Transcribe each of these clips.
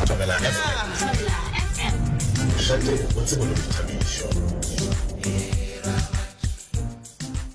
Thobela FM. Šate o tsebo le boithabišo.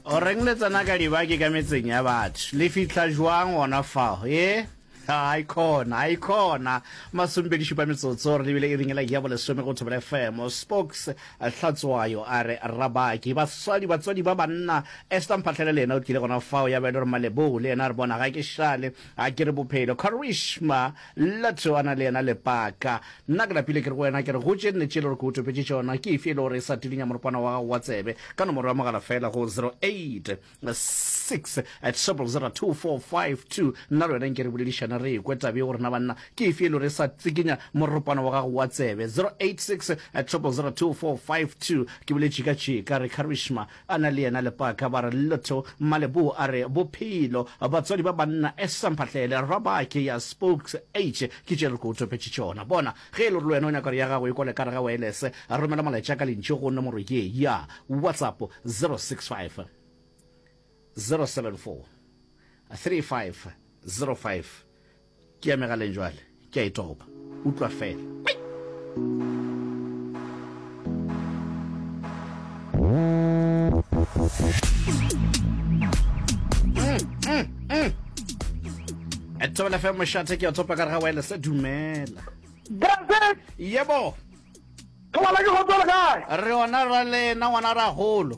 o reng le tsena ka dibaki ka metseng ya batho le fitlha jwang gona fao e a ikhona a ikhona masompedi šupa metsotso re lebile e ringela ya bolesome go thobela fm spokes hlatswayo a re rabaki baswadi batswadi ba banna esta mphatlhele le ena o tlile gona fao ya ba e le gore malebou le ena re bona ga ke šale A ke re bophelo Karishma Lotso a na le yena Lepaka Nna ke lapile ke re go wena ke re go tše nne tše e le gore ke go topetše tšona ke efe e le gore e sa tilinya moropanwa wa gago wa tsebe ka nomoro ya mogala fela go 0868000245 Nna le wena nke re boledišane re ekwe taba ye gore na banna ke efe e le gore e sa tsikinya moropanwa wa gago wa tsebe 0868000245 Ke boletše ka tšeka re Karishma Ana le yena Lepaka ba re, Lotho, Mmaleboa a re, Bophelo, batswadi ba banna, Esther Mphahlele, Rabake ya Spokes, Eiche, ke tše re ko topetše tšona. Bona, ge e le gore le wena o nyaka gore ya gago e kwale ka gare ga waelese, romela molaetša ka lentšu go nomoro ye ya WhatsApp, 065 074 3505. Ke ya megaleng jwale, ke a e topa. Utlwa feela. Thobela fe mošate ke a topa ka re ga wireless dumela. Brazil. Yebo. Thobela ke go tsole kae? Re ona ra lena ngwana ra golo.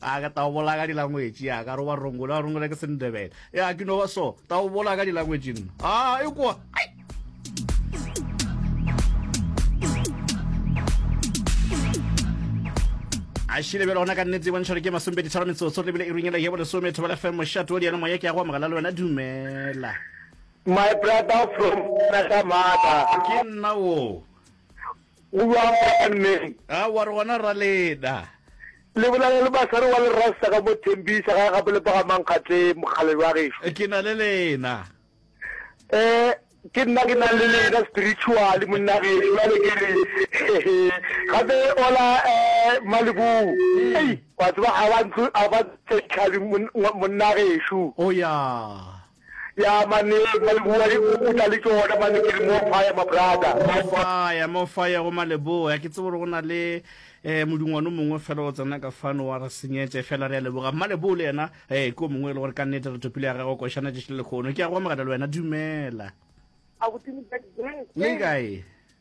a ka tao bola ka dilangwetši ya ka roba rongole a rongole ke sendebele ya ke no ba so tao bola ka dilangwetši nna a e kwa a šile bjale gona ka nnetse e bontšha gore ke masompedi tharo metsotso lebile e runyela yebo lesome thobela fm mošato o diene moya ke ya go amogela le wena dumela my brother from Nagamata. Ke nna wo. Go bjang mo banneng? A wa re gona rra Leda? Le bolela le Masare wa Lerasta ka mo Thembisa gae gape le Pagamankgate mokgalabje wa gešo. Ke na le lena. Eh, ke nna ke nang le lena spiritually monna gešo bjale ke re hehe gape ola eh Malibou. Ei, wa tseba a ba ntlo a ba tse tlhabi monna gešo. O ya. Ya mane Maleboa e o tla le tšona mane ke re more fire ma brother. More fire, more fire go Maleboa. Ke tsebe gore go na le eh, modungwane mongwe fela o tsena ka fano wa re senyetse fela re a leboga. Mmaleboa le yena eh, ke o mongwe e le gore ka nnete re topile ya gagwe košana tšešile lekgono. Ke a go amogela le wena, dumela. Abuti Modjadji, ke Le kae?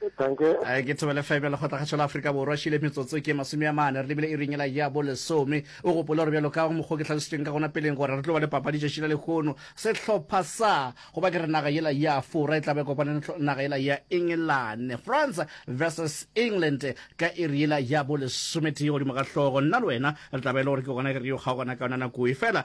Eh, ke thobele fm ya lekgotlakgašo la aforika borwa šile metsotso ke masome a mane re lebile e ringela ya bo lesome o gopole gore bjalo ka mokgwa ke tlhalositsweng ka gona peleng gore re tlo ba le papadi tšatši la lekgono sehlopha sa go ba ke re naga yela ya afora e tlabe kopane naga yela ya england france versus england ka e re yela ya bo lesometee godimo ga hlogo nna le wena re tlabe e le gore ke gona ke re yo kgaogana ka yona nako e fela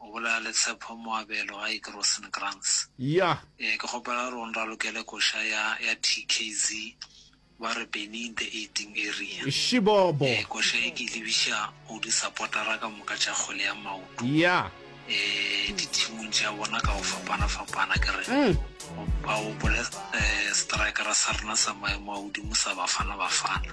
O bolaya le Tshepo Moabelo ga eke Rosenkrantz. Yah. Ee, ke kgopela gore o nralokele koša ya, ya TKZ, ba re Benny in the Eighting Area. Shibobo. Ee, koša ye ke e lebiša go disapotara ka moka tša kgwele ya maoto. Yah. Ee, dithimong tša bona ka go fapana-fapana, ke re, Go, ba gopole, ee, setraekara sa rena sa maemo a godimo sa Bafana Bafana.